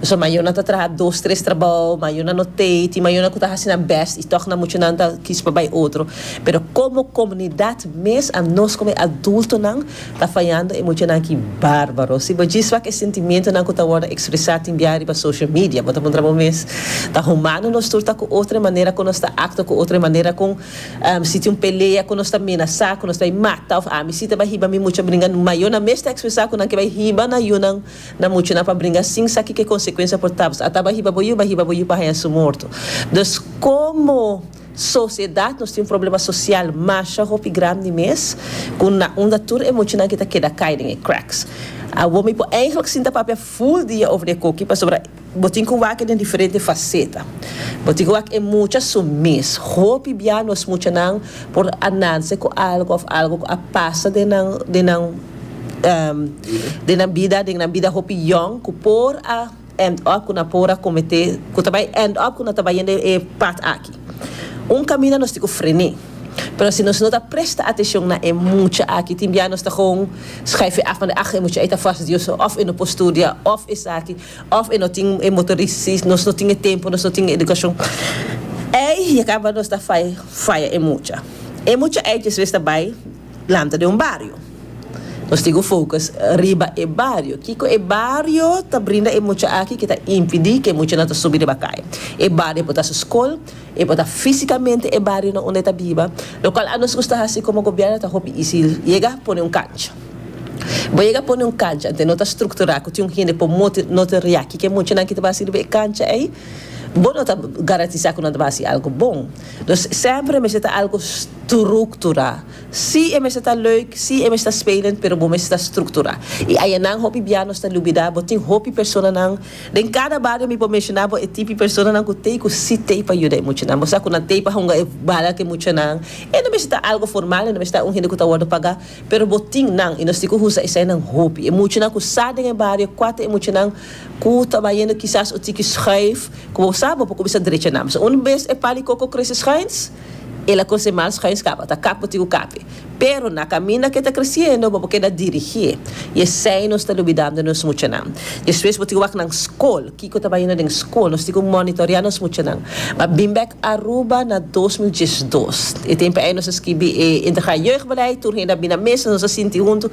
Pasobra mayornan ta traha dos, tres trabao, mayornan no t'ei, tin mayornan cu ta haci nan best y toch nan muchanan ta kiss pa bay otro. Pero como comunidad mes a nos como e adultonan ta fayando e muchanan aki barbaro. Si bo djis wak e sentimentonan cu ta wordo expresa tin bia riba social media, bo ta puntra bo mes, ta humano nos tur ta cu otro e manera cu nos ta actua, cu otro e manera cu si tin un pelea cu nos ta menasa, cu nos ta bay mata of ami si ta bay hiba mi mucha bringa, mayornan mes ta expresa cu nan ke bay hiba na yunan. Na muchu nan pa bringa sin sa kiko e konsekuensia por tabas. A taba hiba bo yu, ba hiba bo yu pa haña su morto. Dus komo sosiedat nos tin un problema sosial masha hopi grandi mes ku na unda tur e muchu nan ke ta keda kai den e cracks. Awor mi por eindelijk sinta papia full dia over e koki pasobra Bo tin ku wak e den diferente faseta. Bo tin ku wak e mucha su mes. Hopi bia nos muchanan por a nanse ku algu òf algu ku a pasa den nan den nan den nan bida den nan bida hopi yòn ku por a end up ku nan por a kometé ku ta bai end up ku nan ta bai yende e pat aki. Un kaminda nos tin ku frené. Pero si nos no ta presta atenshon na e mucha aki tin bia nos ta gewoon skrijf e af manda ah e mucha ei ta fas dioso òf e no por studia òf esaki. Of e no tin e motoris si nos no tin e tempo nos no tin e educacion ey ya caba nos ta faya e mucha e mucha ey despues ta bay lanta den un bario nos tin cu focus riba e bario kico e bario ta brinda e mucha aki que ta impidi que e muchanan ta subi riba cay e bario por ta su scol e por ta fisicamente e barionan unda e ta biba lo cual a nos gusta haci como gobierno ta hopi easy yega pone un cancha. Bo yega pone un kancha ante no ta strukturá ku tin un hende ku moti no ta ria kiko e muchanan ki ta bai sirbi e kancha ei, bo no ta garantisá ku nan ta bai hasi algu bon. Dus sèmpre e mester ta algu strukturá. Sí, e mester ta leuk, sí, e mester ta spelend, pero bo mester ta strukturá. I ayanan hopi bia nos ta lubidá bo tin hopi personanan den kada bario mi por menshoná bo e tipi personanan ku t'ei ku sí t'ei pa yuda e muchanan. Bo sa ku nan t'ei pa hunga e bala ku e muchanan. E no mester ta algu formal, e no mester ta un hende ku ta wòrdu pagá. Pero bo tin nan y nos tin cu usa esainan hopi. E muchanan cu sa den e bario cua ta e muchanan cu ta bayendo kisas un tiki schuif. Como bo sa bo por cuminsa drecha nan. P'esei un bes e pal di coco crece schuins, el a crece mal schuins caba. Ta kap bo tin cu kape. Pero na caminda k'e ta creciendo bo por keda dirigi e. Y esai nos ta lubidando nos muchanan. Despues bo tin cu wak nan scol. Kiko ta bayuno den skol? Nos tin ku monitorea nos muchanan. M'a bin bèk Aruba na dos mil diesch dos. E tempu ei nos a skibi e Integraal Jeugdbeleid, tur hende a bin na mesa, nos a sinti huntu.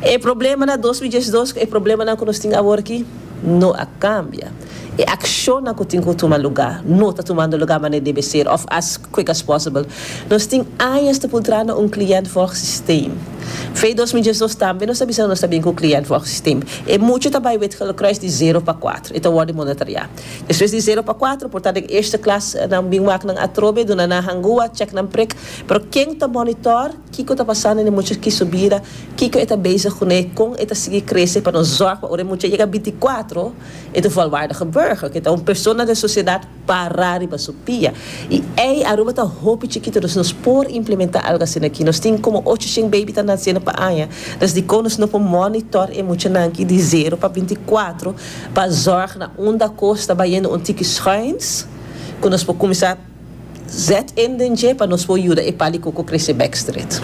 E problema na dos mil diesch dos ku e problemanan ku nos tin awor aki no a kambia. E akshonnan ku tin ku tuma lugá no ta tumando lugá manera debe ser òf as quick as possible. Nos tin añas ta pultrá na un cliëntvolgsysteem. Fe dos mil diesch dos tambe nos a bisa ku nos ta bin ku un cliëntvolgsysteem. E mucha ta bai Wit-Gillekruis di zero pa kuater. E ta wòrdu monitorea. Despues di zero pa kuater por ta den eerste klas. Nan bin wak nan atrobe, duna nan hangua, chèk nan prik. Pero ken ta monitor kiko ta pasando den e mucha ki subida, kiko e ta bezig kuné, kon e ta sigui krese pa nos zòg pa ora e mucha yega binti kuater e ta volwaardige burger, ku e ta un persona den sosiedat. Para riba su pia. Y ey, Aruba ta hopi chikito, dus nos por implementa algo asina aki. Nos tin como ocho shen baby ta naciendo pa aña, dus dico nos no por monitor e muchanan aki di zero pa binti cuatro pa zorg na unda cos ta bayendo un tiki schuins cu nos por cuminsa zet in den dje pa nos por yuda e palico cu crece backstreet.